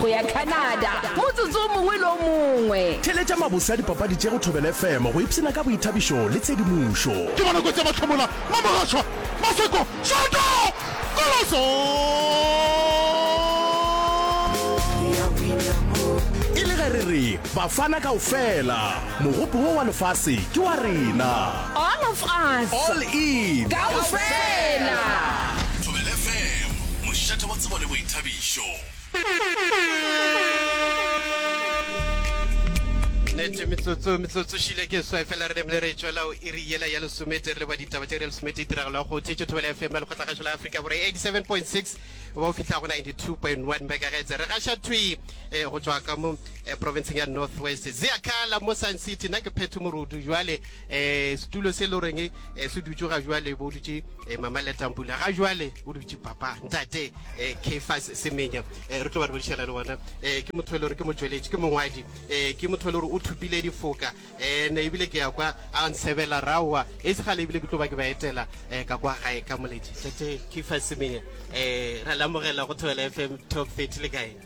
go ya Canada motsotso o mongwe le o mongwe. Theletša mabose a dipapadi tše go Thobela FM go ipshina ka boithabišo le tshedimošo. Ke bona kotsi ya mahlomola mo mogaswa Maseko Shoto Koloso E le ge re re Bafana kaofela Mogopo wo wa lefase ke wa rena All of us All in Kaofela Thobela FM Mošate wa tsebo le boithabišo. nete metsotso metsotso šile ke swa fela re demle re tšwela o iri yela ya lesomete re le ba ditaba tše re lesomete tiragalo ya go thetše thobela fm ya lekgotlagašo la afrika bore 87.6 ba o fitlha go 92.1 megahertz re gaša thwi eh, go tšwa ka mo eh, provinceng ya north west zeakala mo sun city na ke phetho morudu jwale um setulo se le goreng um se dutse ga jwale bo dutse um mama letampula ga jwale o dutse papa ntate um kefas semenya um re tlo ba re bodišana le bona um ke motho e le gore ke motšweletši ke mongwadi um ke motho e le gore o thupile difoka um ne ebile ke ya kwa a nsebela raowa e se gale ebile ke tlo ba ke ba etela um ka kwa gae ka moledi tate kefas semenya um ra lamogela go thobela f m top thirty le kae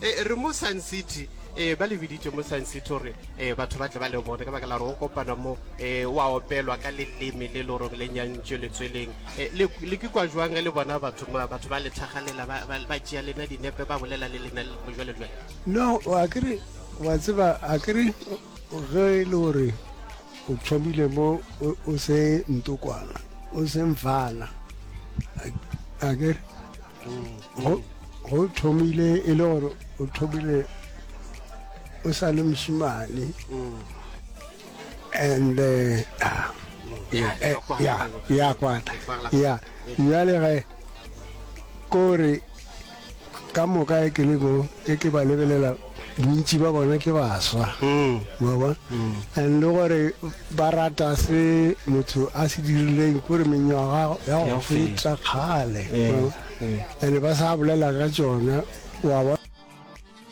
E, re mo Sun City. E, ba le biditše mo Sun City gore e, batho ba tle ba le bone ka baka la gore go kopana mo e, wa opelwa ka leleme le le goreng le nyantšwe letsweleng. E, le, le ke kwa jwang ge le bona batho ma- batho ba le tlhagalela ba, ba, ba tšea lena dinepe ba bolela le lena le go jwale jwale? no wa ke re wa tseba a ke re ge e le gore o thomile mo o, o se ntokwana o se mfana a, a ke re go thomile e le gore o thomile o sa le mosimane and eh, ah, eh, ya kwata ya jale ge kore ka moka e ke le mo e ke ba lebelela Bontši ba bona ke baswa, mwa bona, and le gore ba rata se motho a se dirileng kore menywaga ya go feta kgale, and ba sa bolela ka tšona, wa bona.